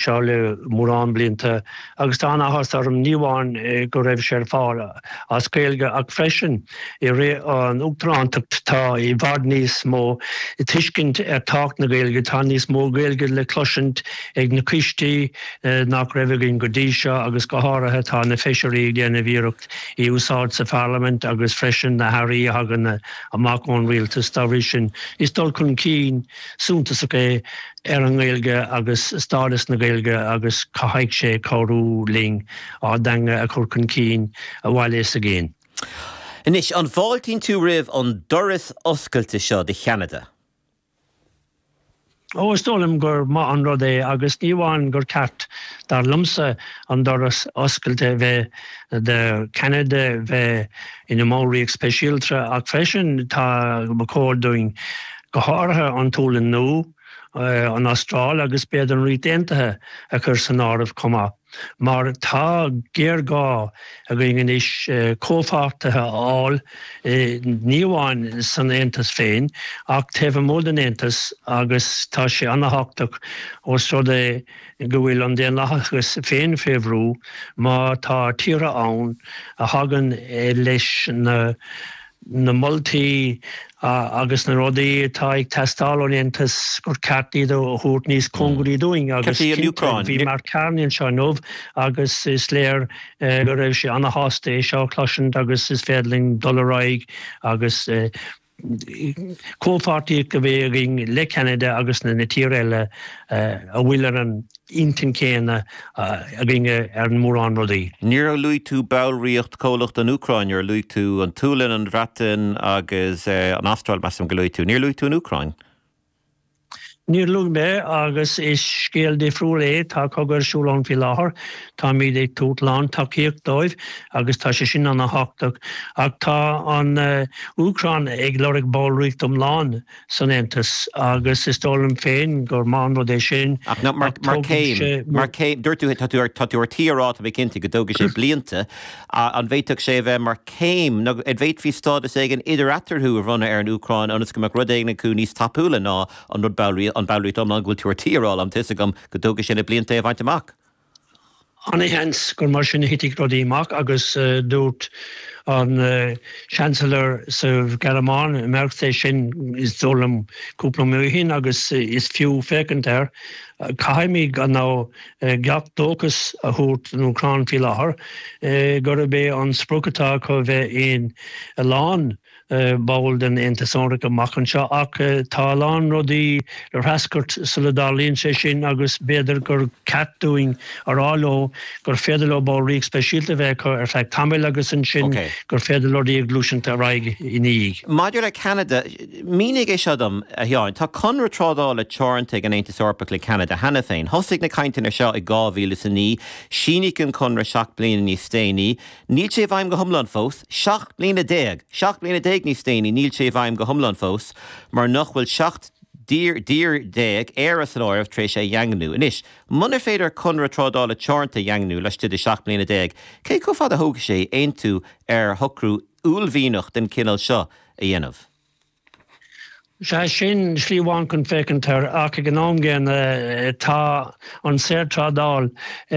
seo le mórán blianta agus tá an-áthas orm ní amháin go raibh sé ar fáil as Gaeilge ach freisin i rith an Uachtarántacht tá i bhfad níos mó tuiscint ar thábhacht na Gaeilge, tá níos mó Gaeilge le cloisint ag na coistí nach raibh againn go dtí seo agus go háirithe tá na Feisirí ag déanamh iarracht í a úsáid sa Pharlaimint agus freisin na hAirí a thagann amach ón Rialtas. Dá bhrí sin is dul chun cinn suntasach é. ar an nGaeilge agus stádas na Gaeilge agus caithfidh sé cabhrú linn ár dteanga a chur chun cinn sa bhaile againn. Anois, an bhfáiltíonn tú roimh an doras oscailte seo do Cheanada? Ó, is dóigh liom gur maith an rud é agus ní amháin gur cheart, dar liomsa, an doras oscailte bheith do Cheanada bheith ina mballraíocht speisialta ach freisin tá ba chóir dúinn go háirithe an tSéalainn Nua, an Astráil agus b'fhéidir an Ríocht Aontaithe a chur san áireamh chomh maith, mar tá géarghá againn anois comhpháirtithe a fháil ní amháin san Aontas féin ach taobh amuigh den Aontas agus tá sé an-thábhachtach ós rud é go bhfuil an daonlathas féin faoi bhrú má tá tíortha ann a thagann leis na na moltaí agus na rudaí atá ag teastáil ón Aontas, gur ceart iad a thabhairt níos cóngaraí dúinn agus cinnte, bhí Mark Carney anseo inniu agus is léir go raibh sé ana-shásta é seo a chloisint agus is féidir linn dul ar aghaidh agus comhpháirtíocht a bheith againn le Ceanada agus na tíortha eile a bhfuil ar an intinn chéanna againne ar mhórán rudaí. Níor luaigh tú ballraíocht comhlach don Úcráin, nuair a luaigh tú an tSualainn, an Bhreatain agus an Astráil, measaim gur luaigh tú. Níor luaigh tú an Úcráin. Níor luaigh mé, agus is scéal difriúil é. Tá cogadh ar siúl ann faoi láthair. Táimid ag tabhairt lántacaíocht dóibh agus tá sé sin ana thábhachtach. Ach tá an Úcráin ag lorg ballraíocht iomlán. san Aontas, agus is dóigh liom féin gur maith an rud é sin, ach tógfaidh sé. Dúirt tú, tá tú ar tí a rá, tá mé cinnte, go dtógfaidh sé blianta. An bhféadfadh sé a bheith mar chéim, nó an bhféadfaí stádas éigin idir-eatarthu a bhronnadh ar an Úcráin ionas go mbeadh rud éigin acu níos tapúla ná an ballraíocht iomlán go bhfuil tú ar tí a rá, tá a fhios agam go dtógfaidh sé na blianta é a bhaint amach? Ana-sheans gur mar sin a thitfidh rudaí amach agus dúirt an Seansailéir sa Ghearmáin, Merz, é sin, is dóigh liom, cúpla mí ó shin agus is fiú féachaint air. Caithfimid ana gach dóchas a thabhairt don Úcráin faoi láthair gurb é an sprioc atá acu a bheith ina lán, ball den Aontas Eorpach amach anseo ach tá a lán rudaí le treascairt sula dtarlaíonn sé sin agus b'fhéidir gur ceart dúinn a rá leo gur féidir leo ballraíocht speisialta a bheith acu ar feadh tamaill agus ansin gur féidir leo a bheith ag gluaiseacht ar aghaidh ina dhiaidh. Maidir le Ceanada, mínigh é seo dom, a Sheáin. Tá conradh trádála teoranta ag an Aontas Eorpach le Ceanada cheana féin. Thosaigh na cainteanna seo i 2009, síníodh an conradh seacht mbliana níos déanaí, Níl sé i bhfeidhm go hiomlán fós, seacht mbliana déag! Seacht mbliana déag níos déanaí níl sé i bhfeidhm go hiomlán fós, mar nach bhfuil seacht dtír déag, Éire san áireamh, tar éis é a dhaingniú. Anois, munar féidir conradh trádála teoranta a dhaingniú laistigh de sheacht mbliana déag, cé chomh fada a thógfaidh sé aontú ar shocrú uaillmhianach den chineál seo a dhéanamh? Sea, sin slí amháin chun féachaint air, ach ag an am gcéanna, tá an saorthrádáil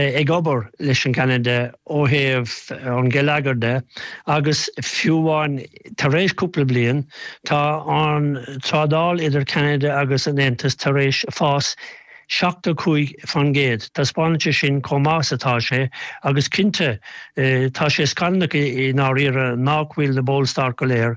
ag obair leis an gCeanada ó thaobh an gheilleagair de, agus fiú amháin tar éis cúpla bliain, tá an trádáil idir Ceanada agus an Aontas tar éis fás. 75%. Taispeánann sé sin chomh maith is atá sé, agus cinnte tá sé scannalach i ndáiríre nách bhfuil na ballstáit go léir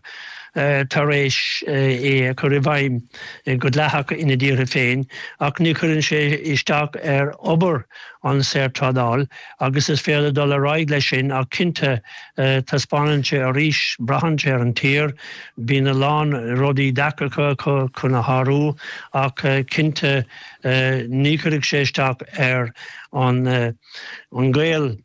tar éis é a chur i bhfeidhm go dleathach ina dtíortha féin, ach ní chuireann sé isteach ar obair an saorthrádáil Agus is féidir dul ar aghaidh leis sin, ach cinnte, taispeánann sé arís, braitheann sé ar an tír, bíonn a lán rudaí deacrachtaí acu chun a shárú, ach cinnte ní chuirfidh sé isteach ar an ngaol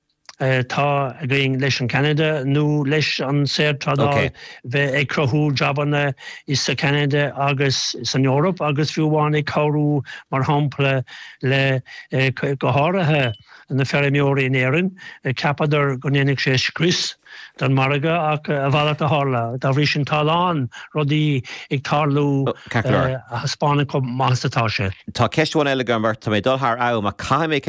atá againn leis an Ceanada nó leis an saorthrádáil bheith ag cruthú jabanna i sa Cheanada agus san Eoraip agus fiú amháin ag cabhrú mar shampla le, go háirithe. na feirmeoirí in Éirinn, cheapadar go ndéanfadh sé scrios don mhargadh ach a mhalairt a tharla. Dá bhrí sin, tá a lán rudaí ag tarlú a thaispeánann chomh maith is atá sé. Tá ceist amháin eile agam ort. Tá mé ag dul thar am ach caithfidh mé ceist a.